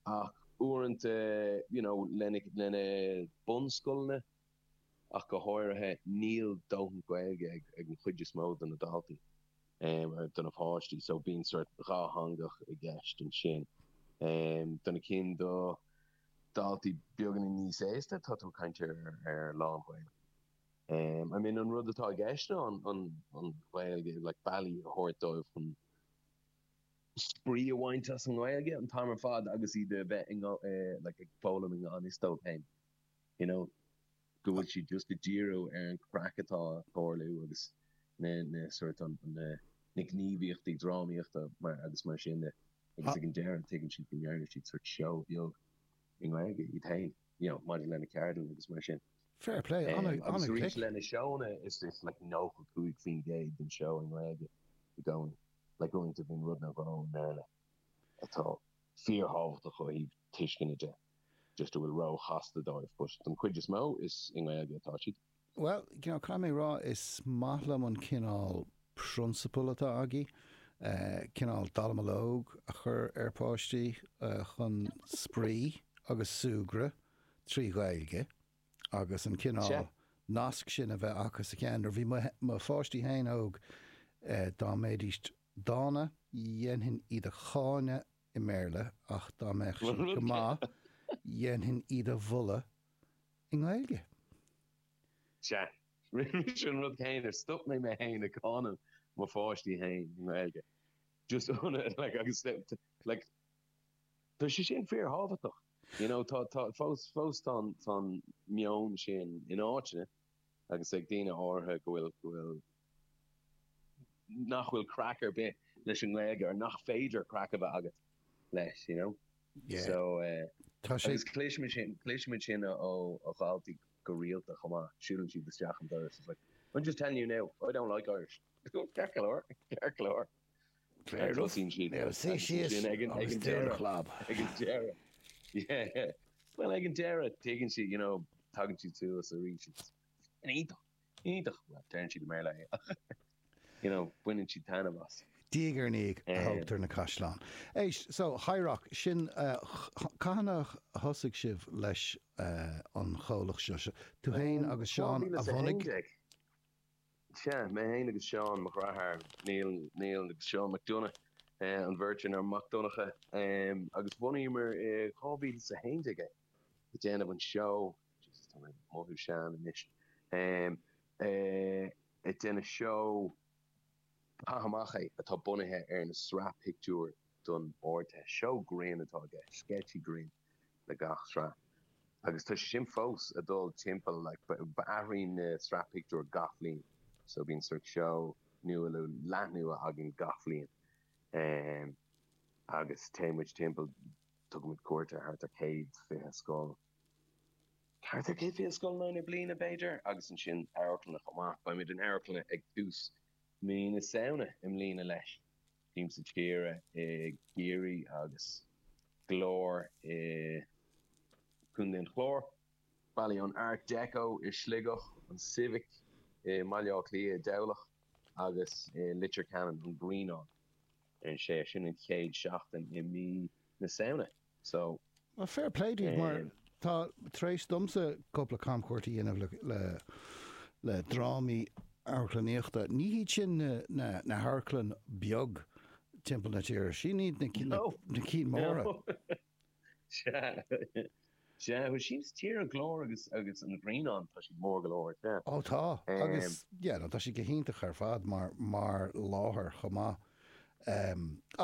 ach uaireanta, you know, lena, lena bunscoileanna, ach go háirithe, níl dóthain Gaeilge ag, ag an chuid is mó de na daltaí, um, or de na páistí, so bíonn sort dhátheangachas i gceist ansin. Um, do na cinn, do dhaltaí beagáinín níos aosta, tá tú ag caint ar, ar lán-Ghaeilge. Um, I mean, an rud atá i gceist ná an, an, an Ghaeilge, like, bealaí a thabhairt dóibh chun spraoi a bhaint as an nGaeilge an t-am ar fad agus iad a bheith ag foghlaim i ngan fhios dóibh féin you know go bhfuil siad just ag díriú ar an chraic atá á tarlú agus na na sort an na na gníomhaíochtaí drámaíochta mar agus mar sin de agus ag an deireadh tuigeann siad go ndearna siad sort seó beag i nGaeilge iad féin you know maidir lena ceardlann agus mar sin Fair play um, ana, ana-ghlic. Lena seónna is is like 95 faoin gcéad den show i nGaeilge i gcónaí. le go roinnt, má bhíonn rudaí á ndéanamh i mBéarla atá fíorthábhachtach ó thaobh tuisceana de nó just atá róchasta dóibh, but don chuid is mó is i nGaeilge atá siad. Bhuel, you know, caithfidh mé a rá, is maith liom an cineál prionsabal atá agaibh, cineál dallamullóg a chur ar pháistí chun spraoi agus súgradh trí Ghaeilge. agus an cineál nasc sin a bheith acu sa cheann. Nuair a bhí mo pháistí féin óg, dá mbeidís dána, dhéanfainn iad a cháineadh i mBéarla ach dá mbeadh siad go maith, dhéanfainn iad a mholadh i nGaeilge. Sea, rinne mise an rud céanna, stop mé mé fhéin ag cáineadh mo pháistí féin i nGaeilge. Just, agus, like, tá sé sin fíor-thábhachtach. You know, tá, tá, fós, fós tá an, tá an meon sin in áiteanna agus ag daoine áirithe go bhfuil, go bhfuil, nach bhfuil craic ar bith leis an nGaeilge or nach féidir craic a bheith agat leis, you know. Yeah. So, eh, Tá sé- agus cloisimid sin, cloisimid sin ó, ó, ó dhaltaí go rialta chomh maith, siúlann siad isteach an doras, it's like, I'm just telling you now, I don't like Irish. Ceart go leor, ceart go leor. Ceart go leor, bhuel suí síos agus dún do chlab. Ag an deireadh, yeah, yeah, bhuel, ag an deireadh, tuigeann siad, you know, tagann siad suas arís agus sin iontach, iontach, bhuel, deireann siad i mBéarla é ach, you know, baineann siad taitneamh as. Diaidh ar ndiaidh a thógtar na caisleáin. Éist, so, High Rock, sin, cathain a thosaigh sibh leis an chomhlacht seo? Tú fhéin agus Seán a bhunaigh? Sea, mé fhéin agus Seán, mo dhreatháir, Neil, Neil agus Seán McDonagh, an bheirt ar nós Mac Donncha, agus bhunaíomar i 2011 é, ag déanamh an seó, Jesus tá mé ag mothú sean anois, ag déanamh seó Caith Amach É atá bunaithe ar na sraith pictiúr don Ardteist. Seó grinn atá i gceist, sceitsí grinn. le gach sraith agus tá sé sin fós ag dul timpeall like athraíonn na sraith pictiúr gach bliain so bíonn sort seó nua nó leath nua againn gach bliain ehm agus téann muid timpeall tugann muid cuairt ar thart ar 120 scoil thart ar 120 scoil le linn na bliana b'fhéidir agus ansin amharclanna chomh maith beidh muid in amharclanna ag tús mí na Samhna i mbliana leis. Siamsa Tíre i gCiarraí agus Glór i gContae an Chláir. Bailiú an Art Deco i Sligeach, an Civic i mBaile Átha Cliath, i dTamhlacht agus i Leitir Ceanainn, an Grianán. Is é sin an chéad seachtain i mí na Samhna. So, Well fair play daoibh mar eh. tá tar éis domsa cúpla camchuairt a dhéanamh le, le, le drámaí amharclannaíochta. Ní hiad sin na, na, na hamharclann beag timpeall na tíre. Sin iad na, na, No, na cinn móra. no. Sea, sea, well síos tíre glór agus, agus an Grianán, tá siad mór go leor, sea. Ó tá, agus, Em. yeah, no, tá siad go hiontach ar fad mar, mar láthair chomh maith.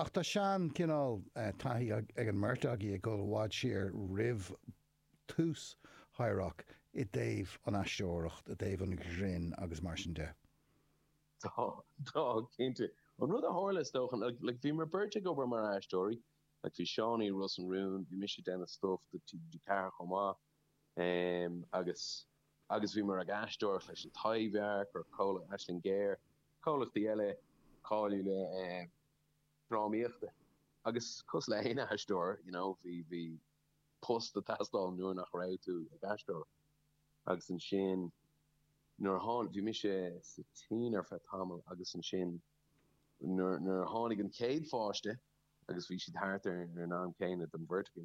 Ach tá seanchineál taithí ag an mbeirt agaibh ag dul i bhfad siar roimh tús High Rock i dtaobh an aisteoireacht, i dtaobh an ghrinn agus mar sin de. Tá, tá, cinnte. An rud a tharla is dócha, like, like bhíomar beirt ag obair mar aisteoirí, like bhí Seánie i Ros na Rún, bhí mise ag déanamh stuff do TG4 chomh maith, agus agus bhíomar ag aisteoireacht leis an Taibhdhearc, nó comhlacht Aisling Ghéar, comhlachtaí eile cáiliúla drámaíochta agus cosúil le haon aisteoir you know bhí bhí post ag teastáil nuair nach raibh tú ag aisteoireacht agus ansin nuair a tháinig bhí mise sa tSín ar feadh tamall agus ansin nuair nuair a tháinig an chéad pháiste agus bhí siad thart ar an am céanna don bheirt againn